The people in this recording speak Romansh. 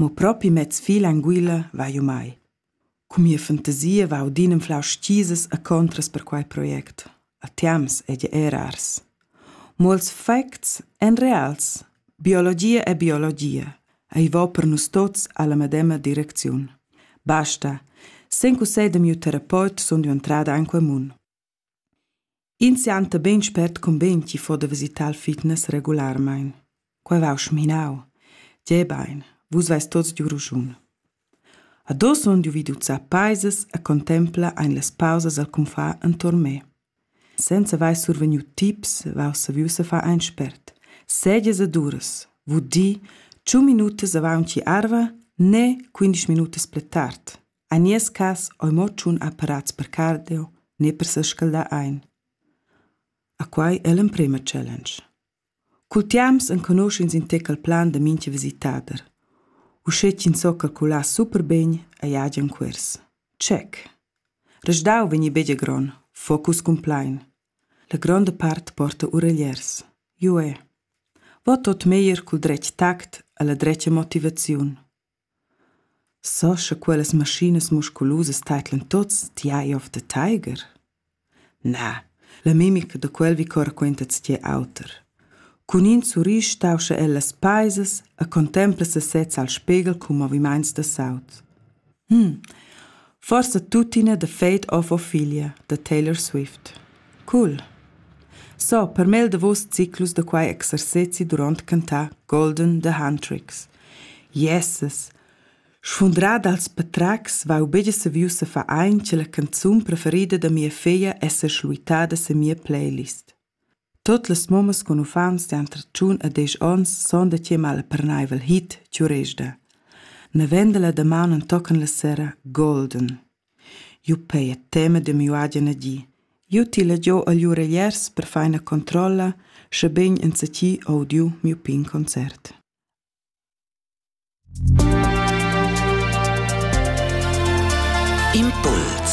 Mo propi mez fil anguilla va jeu mai. Cun mia fantasia va audin anflau stisas e contras per quei project. A temps ei ei era ars. Mo ils facts ein reals. Biologia è biologia. Ei va per nus tots alla medema direcziun. Basta. Sen cussegl da miu terapeut sun jeu entrada en quei mun. Ins sianta beinspert cumben ch'i fo da visitar il fitness regularmein. Quei vau schminau. Tgei bein, vus veis tots giu raschun. Ad oz sun giu vid uzzar paisas e contempla ein las pausas al confar enturn me. Senza veis survegniu tips, vau saviu se far ein spert. Segias e duras, vul dir, tschun minutas avaunci arva ne quindisch minutas pli tard. En nies cass ei mo tschun apparats per cardio ne per sescaldar ein. A quei ei l'emprema challenge. Cul tiams enconusch'ins in tec il plan da mintga visitader. Uschè ch'ins so calcular super bene ei agen cuors. Check. Resdau vegni begia gron, focus cun plein. La gronda part porta uregliers. Jue. Vot tot meglier cul dretg tact alla dretga motivaziun. So scha quellas maschinas musculusas taidlan tuots, ti hai ov da taiger? Na, la mimica da quel vi corraquenta tschiel auter. Cun in surrisch stauscha el las paisas e contempla sasez al spegel cun movimaints da saut. Hm, Forsa tuttina The Fate of Ophelia da Taylor Swift. Cool! So, per mel davos ciclus da quai exercezi durant cantà Golden The Huntrix. Yes! Sfundrada als patracs va begia saviu sa fa ein che la canzun preferida da mia feglia essa schluitada se mia playlist. Tuot las mummas cun uffants d'han tratschun e desch ons sun da chiamar la pernaivel hit Chiuresda. Navenda la damaun entochen la sera Golden. Jeu pei a tema da miu agen di. Jeu tila giu agl uregliers per feina controlla, schabegn enzatgi audiu miu pign concert. Impuls